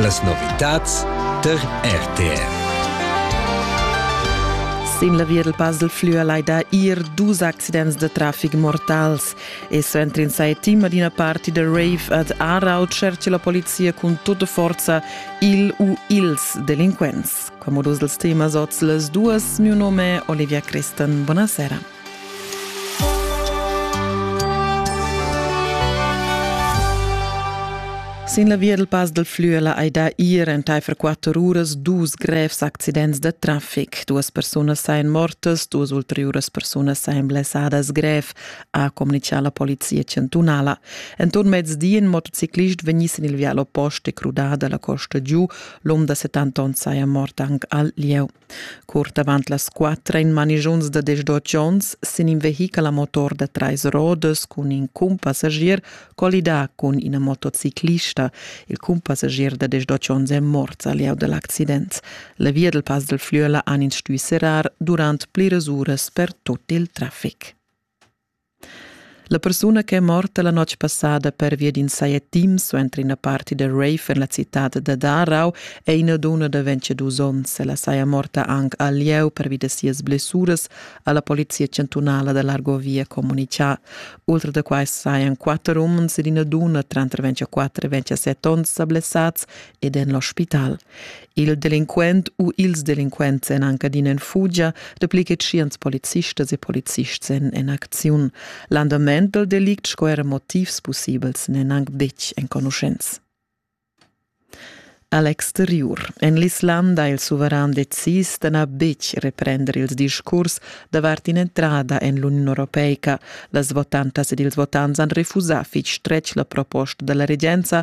Las novitads tar RTR. Sin la via del Basel flua laida ir dus accidents de traffic mortals e suenter in sai team ad ina parti de rave ad Aarau cerce la polizia cun tutta forza il u ils delinquents. Come dus dels temas oz les duas, mio nome è Olivia Christen. Buonasera. Sin la via dal Pass dal Flüela hai dà ir entaifer quatter uras dus grevs accidents da traffic. Duas persunas sain mortas, duas ulteriuras persunas sain blessadas grev, ha comunicà la polizia chantunala. Enturn mezdi in motociclist vegniss in il vial oppost e crudà da la costa giu. L'um da 70 onn saja mort anc al lieu. Curt avant las quatter ein manischunz da desch-dotg onns sin in vehichel a motor da trais rodas cun in cumpassagier collidà cun ina motociclista. Il cumpassagier da desch-dotg onns è morts a lieu dal accident. La via del Pass del Flüela han ins stuì serrar durant pliras uras per tut il traffic. La persuna ch'è morta la notg passada pervia d'in sajetim suenter ina party da rave en la citad da Darau è ina dunna da 22 onns. Ella saja morta anc al lieu pervi da sias blessuras, ha la polizia chantunala da l'Argovia communitgà. Ultra da quai sajan quatter umens ed ina dunna tranter 24 e 27 onns sa blessads ed en l'ospital. Il delinquent u ils delinquents èn anc adina en fugia, dapli che tschients policistas e polizists èn en acziun. L'andament dal delict sco era motivs pussibels n'èn anc betg enconuschents. A l'exteriur. En l'Islanda il suveran decis da na betg reprender ils discurs davart in'entrada en l'Uniun Europeica. Las votantas ed ils votants han refusà fitg stretg la proposta dalla regenza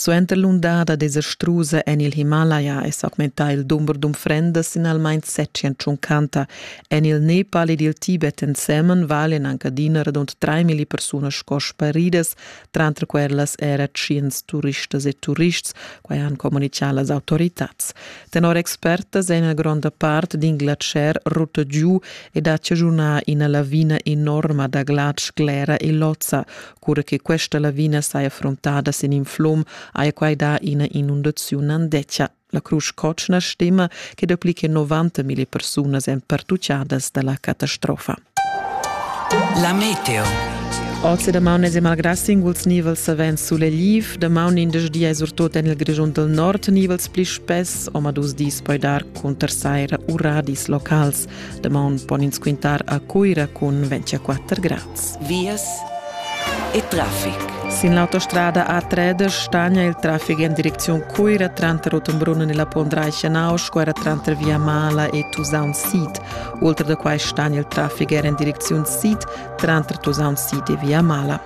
Suenter l'undada desastrusa en il Himalaya è s'augmentà il dumber d'unfrendas sinalmain setschien tschuncanta. En il Nepal ed il Tibet ensemen valen anc adina radund traimilli persunas sco sparidas, tranter quellas era tschients turistas e turists, quai han communitgà las autoritads. Tenor expertas è ina gronda part d'in glacier rutta giu ed ha chaschunà ina lavina enorma da glatsch, glera e lozza. Cura che questa lavina saja frontada sin in flum, haja quai dà ina inundaziun andetgia. La Crusch Cotschna stima che dapli che 90.000 persunas èn pertutgadas da la catastrofa. La meteo. Oz e damaun es malgrà singuls nivels savens sulegliv. Damaun indesch di è surtut en il Grischun del Nord nivels pli spess, omadus dis poi dar cunter saira u radis locals. Damaun pon ins quintar a Cuira cun 24 grads. Vias e traffic. Sin l'autostrada A3 stagna il traffic en direcziun Cuira tranter Rottenbrunn e la Pondreicha Nauschquara tranter Via Mala e Tusaun Sid. Oltre da quai stagna il traffic er en direcziun sid tranter Tusaun Sid e Via Mala.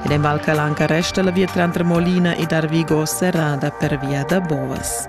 Ed en Val Calanca resta la via tranter Molina ed Arvigo serrada per via da Bovas.